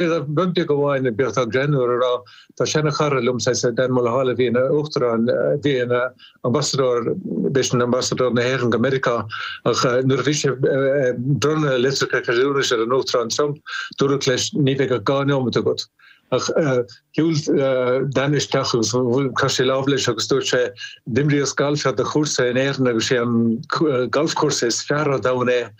Bhíodh rud beag amháin ag beartán greim nuair tá seanchara liom, sea, sea, Dan Mulhall a bhí ina Uachtarán, bhí ina Ambasadóir, b'é sin Ambasadóir na hÉireann go Meiriceá, ach nuair a bhí sé ag bronnadh litreacha ceadúnais ar an Uachtarán Trump, dúradh leis, ní bheidh ach dhá neomat agat. Ach shiúil Dan isteach agus chroith sé lámh leis agus dúirt sé, d'imríos galf ar do chúrsa in Éirinn agus sé an galfchúrsa is fearr ar domhan é,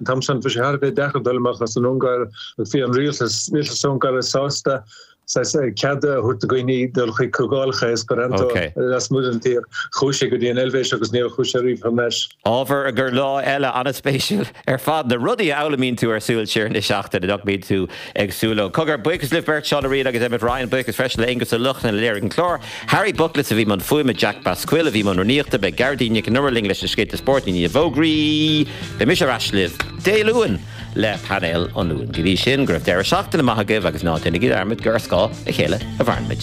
An t-am sin, bhí sé thar a bheith deacair dul amach as an Ungáir agus bhí an rialtas Ungáireach sásta saghas cead a thabhairt do dhaoine dul chuig comhdhálacha Esperanto lasmuigh den tír. Chuaigh sé go dtí an Eilvéis agus níor chuaigh sé ariamh thar n-ais. Ábhar i gcomhair lá eile an-spéisiúil ar fad, na rudaí a fhoghlaimíonn tú ar Súil Siar na Seachtaine, nach mbíonn tú Ag súil leo. Cogar, buíochas libh beirt, Seán Ó Riain agus Emmet Ryan, buíochas freisin le Aonghus Ó Lochlainn a léirigh an clár, Harry Buckless a bhí i mbun fuaime, Jack Basquill a bhí i mbun rúnaíochta, beidh Gearóidín Nic an Iomaire linn leis na scéalta spóirt, i ndiaidh na bhfógraí, beidh mise ar ais libh Dé Luain le Painéal an Luain. Go dtí sin, go raibh deireadh seachtaine maith agaibh agus ná déanaigí dearmad gur ar scáth a chéile a mhaireann muid.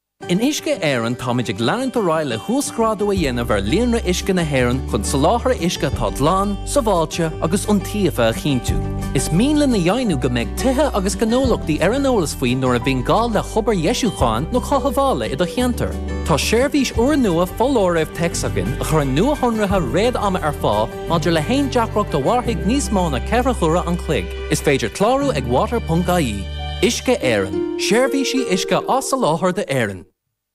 In Uisce Éireann táimid ag leanúint ar aghaidh le huasghrádú a dhéanamh ar líonra uisce na hÉireann chun soláthar uisce atá glan, sábháilte agus iontaofa a chinntiú. Is mian linn a dheimhniú go mbeidh tithe agus gnólachtaí ar an eolas faoi nuair a bhíonn gá le hobair dheisiúcháin nó chothabhála i do cheantar. Tá seirbhís úrnua Foláirimh Téacs againn a chuireann nuashonruithe fíor-ama ar fáil, Maidir le haon deacracht a mhairfidh níos mó na ceithre huaire an chloig, is féidir clárú ag water.ie. Uisce Éireann, Seirbhísí uisce á soláthar d'Éirinn.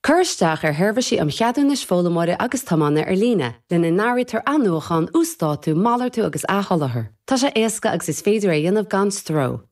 Cuir isteach ar Sheirbhísí um Cheadúnais Foghlaimeora agus Tiomána ar Líne, lena n-áirítear athnuachán, uasdátú, malartú agus athsholáthar. Tá sé éasca agus is féidir é a dhéanamh gan stró.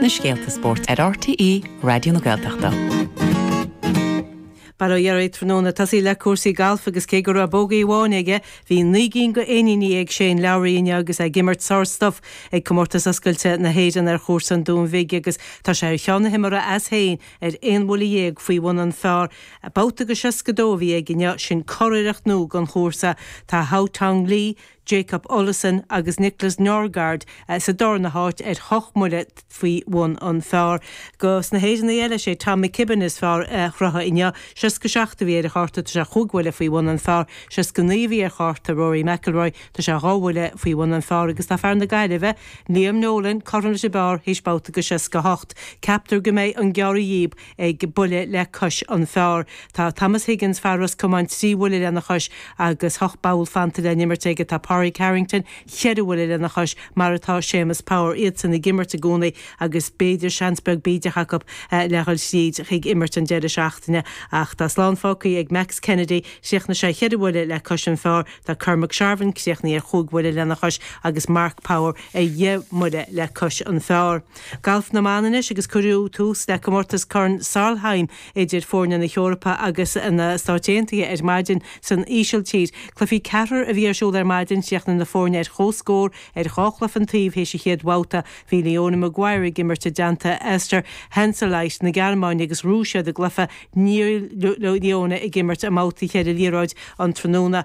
na scéalta spóirt ar RTÉ Raidió na Gaeltachta. Bail ó Dhia oraibh tráthnóna tosóidh muid le cúrsaí gailf agus cé go raibh bógaí amháin aige, bhí naoi gcinn go éiníní ag Shane Lowry inniu agus é ag imirt sárstuif ag Comórtas Oscailte na hÉireann ar chúrsa an Dúin Bhig agus tá sé ar cheann na himeartha as féin ar aon bhuille dhéag faoi bhun an phar. Babhta go 62 a bhí aige inniu, sin curiarracht nua don chúrsa. Tá Haotong Li, Jacob Olesen agus Niklas Nørgaard sa darna háit ar hocht mbuille faoi bhun an phar. Go na hÉireannaigh eile, is é Tom McKibbin is fearr a chruthaigh inniu, 67 a bhí ar a chárta, tá sé chúig bhuille faoi bhun an phar. 69 a bhí ar chárta Rory McIlroy, tá sé dhá bhuille faoi bhun an phar agus tá fear na Gaillimhe, Liam Nolan, cothrom leis an bpar théis babhta go 68. Ceaptar go mbeidh an gearradh dhíob buile le cois an phar. Tá Thomas Higgins, fear Ros Comáin, trí bhuile lena chois agus ocht bpoll fanta le n-imirt aige. Tá Pádraig Harrington, cheithre bhuile lena chois, mar atá Séamus Power. Iadsan ag imirt i gcónaí agus b'fhéidir seans beag bídeach acu le dhul thríd chuig imirt an deireadh seachtaine. Ach tá slán fágtha ag Max Kennedy, chríochnaigh sé cheithre bhuile le cois an phar. Tá Cormac Sharvin críochnaithe ar chúig bhuile lena chois agus Mark Power ar dheich mbuile le cois an phar. Galf na mBan anois agus cuireadh tús le comórtas Corn Solheim idir foirne na hEorpa agus na Stáit Aontaithe ar maidin san Ísiltír. Cluichí ceathrair a bhí ar siúl ar maidin, chríochnaigh na foirne ar chomhscór ar dhá chluiche an taobh théis an chéad bhabhta. Bhí Leona Maguire ag imirt i dteannta Esther Henseleit na Gearmáine agus bhuaigh siad a gcluiche. Níl Leona ag imirt i mbabhtaí cheithre liathróid an tráthnóna.